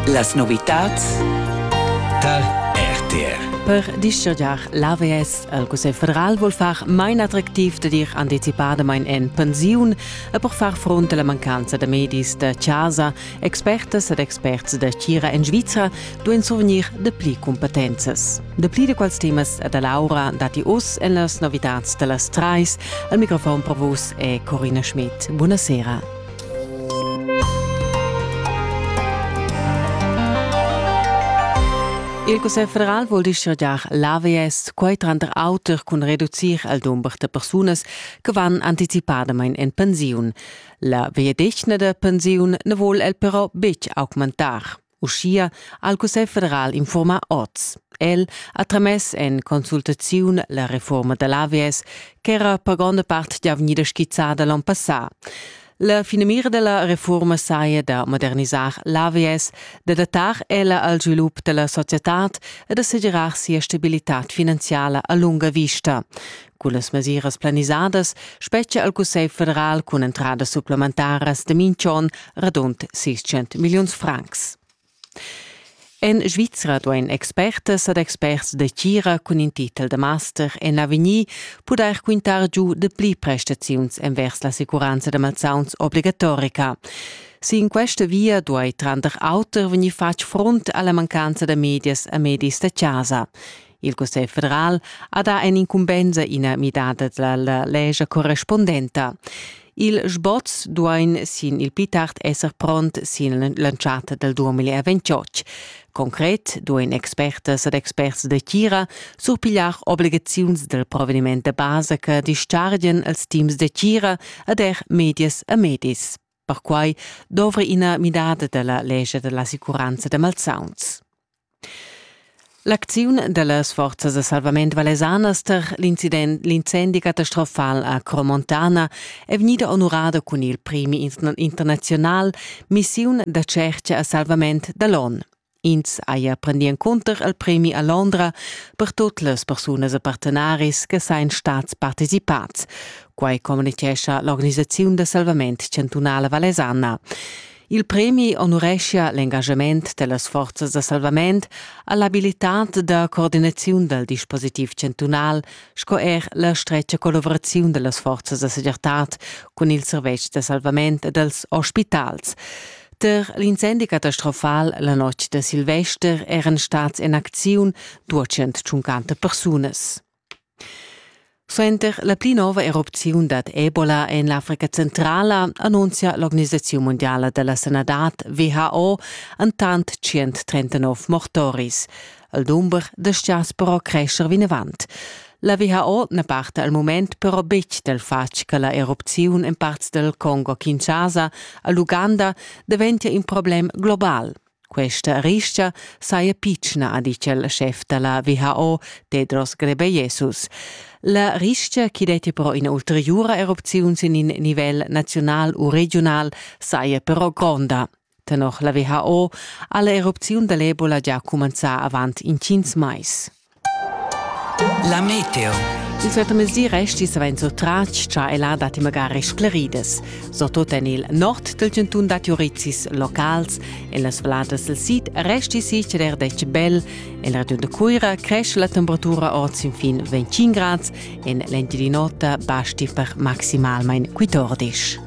Las novitads tar RTR. Per dischargiar l'AVS al Cussegl federal vul far main attractiv da dir anticipadamain en pensiun e per far front a la mancanza da medis da chasa. Expertas ed experts da Cira en Svizra duain survegnir dapli cumpetenzas. Dapli da quels temas da Laura datti oz en las novitads da las trais. Al microfon per vus è Corina Schmidt. Buonasera. Il Cussegl federal vul dischargiar l'AVS, quai tranter auter cun reducir il dumber da persunas che van anticipadamain en pensiun. La vegliadetgna da pensiun na vul el però betg augmentar. Uschia ha il Cussegl federal infurmà oz. El ha tramess en consultaziun la reforma da l'AVS ch'era per gronda part gia vegnida skizzada l'onn passà. La finamira della reforma saja da modernisar l'AVS, da datar ella al svilup della societad e da segirar sia stabilitad finanziala a lunga vista. Cullas mesiras planisadas spetgia il Cussegl federal cun entradas supplementaras de minch'on radund 600 milliuns francs. En Svizra duein expertas ed experts de tgira cun in titel de master en avegnir pudair quintar giu de pli prestaziuns envers la sicuranza de malsauns obligatorica. Sin questa via duei tranter auter vegnir fatg front alla mancanza de medias e medis de casa. Il Cussegl federal ha dà in'incumbensa ina midada dalla lescha correspondenta. Il sboz duain sin il pli tard esser pront sin l'entschatta dal 2028. Concret duain expertas ed experts da tgira surpigliar obligaziuns dal proveniment da basa che dischargian als teams da tgira ed er medias e medis. Perquai dovra ina midada dalla lescha dall'assicuranza da malsauns. L'acziun dallas forzas da salvament valesanas tar l'incendi catastrofal a Cromontana è vegnida onorada cun il premi internazional Missiun da tschertga a salvament da l'ONU. Ins haja prendì encunter il premi a Londra per tut las persunas e partenaris che sain stats participads. Quai communitgescha l'organisaziun da salvament chantunala valesana. Il premi onureschia l'engagement dellas forzas da salvament all'abilitad da coordinaziun dal dispositiv chantunal sco er la stretga collavuraziun dellas forzas da segirtad cun il servetsch da salvament e dels ospitals. Per l'incendi catastrofal la notg da Silvester eran stads en acziun 250 persunas. Suenter la pli nova erupziun dad Ebola en l'Africa centrala annunzia l'Organisaziun mondiala della sanadad WHO antant 139 mortoris. Il dumber da stiaspero crescer vinavant. La viha ord na parta al moment però betg dal fatg che la erupziun en parts dal Congo Kinshasa a l'Uganda daventia in problem global. Questa ristga saja pitschna, ha ditg il schef da la WHO, Tedros Ghebreyesus. La ristga che detti però ina ulteriura erupziun sin in nivel naziunal u regional saja però gronda. Tenor la WHO ha l'erupziun dall'Ebola gia cumenzà avant intgins mais. La meteo. Il suottamesdi resti savens tratg cha ella dat magari scleridas, surtut en il nord del cantun da Turitsis locals, en las valladas del sid resti si ceder dec bel, en la regiun de Cuira cresce la temperatura ord sin fin 25 grads, en l'Engiadin'Ota basti per maximalmain 14.